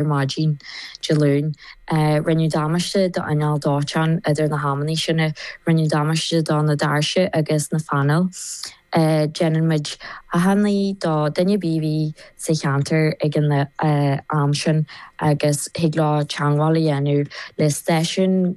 ar maidin Dé Luain. Rinneadh damáiste do inneall dóiteáin idir na hamannaí sin. Rinneadh damáiste do na doirse agus na phainéil. Déanann muid achainí do duine a bhí sa cheantar ag an am sin agus thig leo teagmháil a dhéanamh le stáisiún.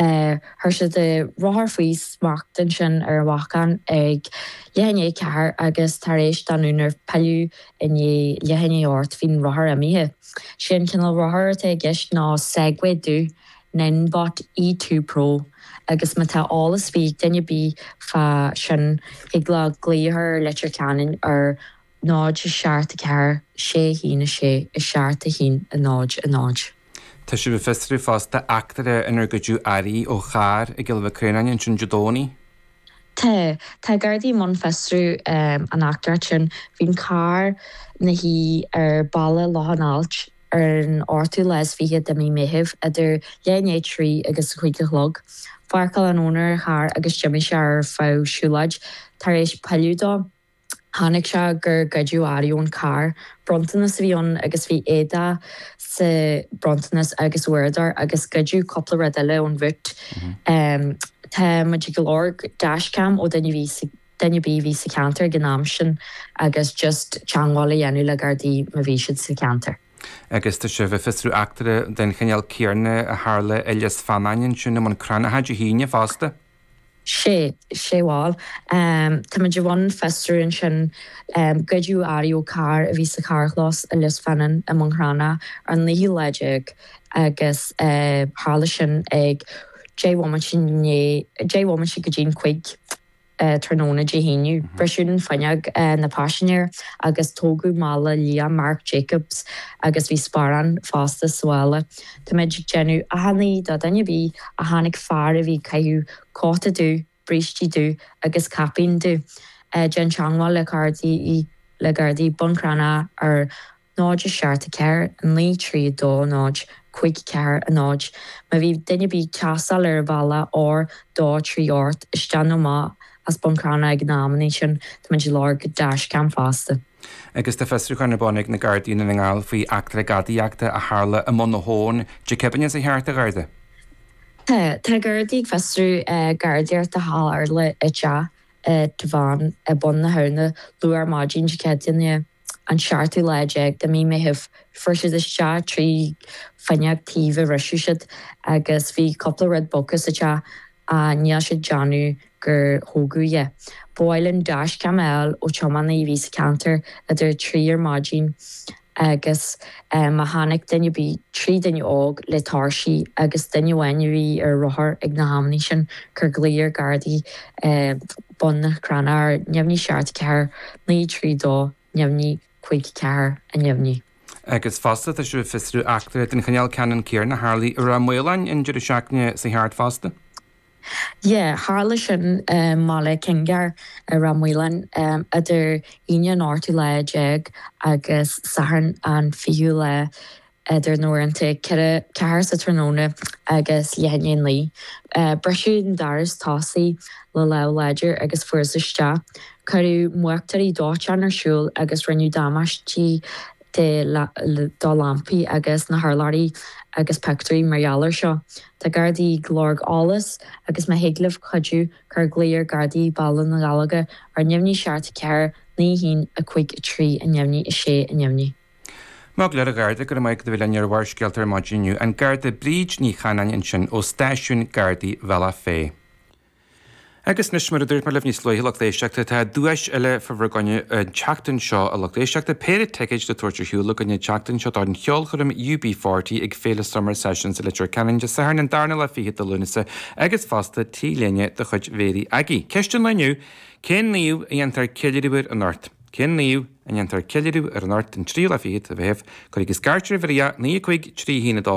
Chuir siad a rothar faoi smacht ansin ar an bhacán ag leath i ndiaidh a ceathair agus tar éis don úinéir pilleadh i ndiaidh leath i ndiaidh a hocht bhí an rothar imithe. 'Sé an cineál rothair atá i gceist ná Segway dubh, Ninebot E2 Pro, agus má tá eolas ar bith ag duine ar bith fá sin thig leo glaoch ar Leitir Ceanainn ar 0, 7, 4, 6, 1, 6, 7, 1, 0, 0. Tá sibh ag fiosrú fosta eachtra inar goideadh earraí ó charr i gCill Mhic Réanáin ansin Dé Domhnaigh? Tá. Tá Gardaí i mbun fiosrú an eachtra sin. Bhí an carr ina shuí ar Bhealach Loch an Ailt ar an ochtú lá is fiche de mí Meithimh idir leath i ndiaidh a trí agus a cúig a chlog. Pháirceáil an úinéir an charr agus d'imigh sé ar feadh siúlóid tar éis pilleadh dó. Chonaic sé gur goideadh earraí ón carr. Bronntanas a bhí ann agus bhí éadach sa bhronntanas agus uaireadóir agus goideadh cúpla rud eile ón bhúit. Tá muid ag lorg dashcam ó duine ar bith duine ar bith a bhí sa cheantar ag an am sin agus just teangmháil a dhéanamh le Gardaí má bhí siad sa cheantar. Agus tá sibh ag fiosrú eachtra den chineál céarna a tharla i Lios Feannáin ansin i mBun Cranncha Dé hAoine fosta? sé, sé bhuel. Táimid i mbun fiosrú ansin. Goideadh earraí ó charr a bhí sa charrchlós i Lios Feannáin i mBun Cranncha ar an naoú lá déag agus tharla sin ag deich bhomaite i ndiaidh, deich bhomaite go dtí'n cúig tráthnóna Dé hAoine. Briseadh an fuinneog na paisinéir agus tógadh mála liath Marc Jacobs agus bhí sparán fosta sa mhála. Táimid ag déanamh achainí do dhuine ar bith a chonaic fear a bhí ag caitheamh cóta dubh, brístí dubha agus caipín dubh. Déan teangmháil le Gardaí le Gardaí, Bun Cranncha ar 0 74 9 3 2 0 5 4 0. Má bhí duine ar bith ag taisteal ar an bhealach R238 isteach nó amach as Bun Cranncha ag na amannaí sin, táimid ag lorg dashcam fosta. agus tá fiosrúchán ar bun ag na Gardaí i nDún na nGall faoi eachtra gadaíochta a tharla i mBun na hAbhann. Dé Céadaoin, seo thart, a Gharda? Tá Gardaí ag fiosrú gadaíocht a tharla i dteach i dTamhain i mBun na hAbhna luath ar maidin Dé Céadaoine, an seachtú lá déag de mí Meithimh. Fuair siad isteach trí fuinneog taobh a bhriseadh siad agus bhí cúpla rud bogtha sa teach. a níl siad ag déanamh gur thógadh é. Ba mhaith linn dashcam a fháil ó tiománaí a bhí sa ceantar idir a trí ar maidin agus má chonaic duine ar bith trí duine óg le tóirsí agus duine amháin a bhí ar rothar ag na hamanna sin cuir glaoch ar gardaí Bun na Cranna ar neamhní seacht 4 9 3 2. neamhní cúig ceathair a neamhní. agus fosta tá siad ag fiosrú eachtra den chineál ceannann céanna a tharlaigh i Ráth Maoláin an deireadh seachtaine seo thart fosta. Yea, tharla sin i mBaile Kinnegar i Ráth Maoláin idir Aoine an 18ú lá agus Satharn an 20ú lá. idir na huaireanta ceithre, ceathair sa tráthnóna agus leath i ndiaidh a naoi. Briseadh an doras tosaigh le lámh láidir agus fuarthas isteach. Cuireadh múchtóirí dóiteáin ar siúl agus rinneadh damáistí do lampaí agus na hurláirí agus pictiúirí mar gheall air seo. Tá Gardaí ag lorg eolas agus má thig libh cuidiú, cuir glaoch ar Gardaí Bhaile na nGallóglach ar neamhní seacht 4 naoi haon a cúig a trí a neamhní a sé a neamhní. Maith go leor, a Gharda, go raibh maith agat as a bheith linn ar Bharrscéalta ar maidin inniu an Garda Bríd Ní Chanainn ansin ó Stáisiún Gardaí Bhealach Féich. Agus anois, mar a dúirt mé libh níos luaithe, lucht éisteachta, tá duais eile fá bhur gcoinne an tseachtain seo, a lucht éisteachta, péire ticéid le tabhairt ar shiúl againn an tseachtain seo don cheolchoirm UB40 ag Féile Summer Sessions i Leitir Ceanainn Dé Sathairn an darna lá 20 de Lúnasa agus fosta T-léine de chuid Mhéirí Aggie. Ceist an lae inniu, cén naomh a ndéantar ceiliúradh air anocht? Cén naomh a ndéantar ceiliúradh ar an Art den triail a fíchead a bheith aibh, cuireadh i scairtear i bhfriath naoi a cuig trí shíneadh dó.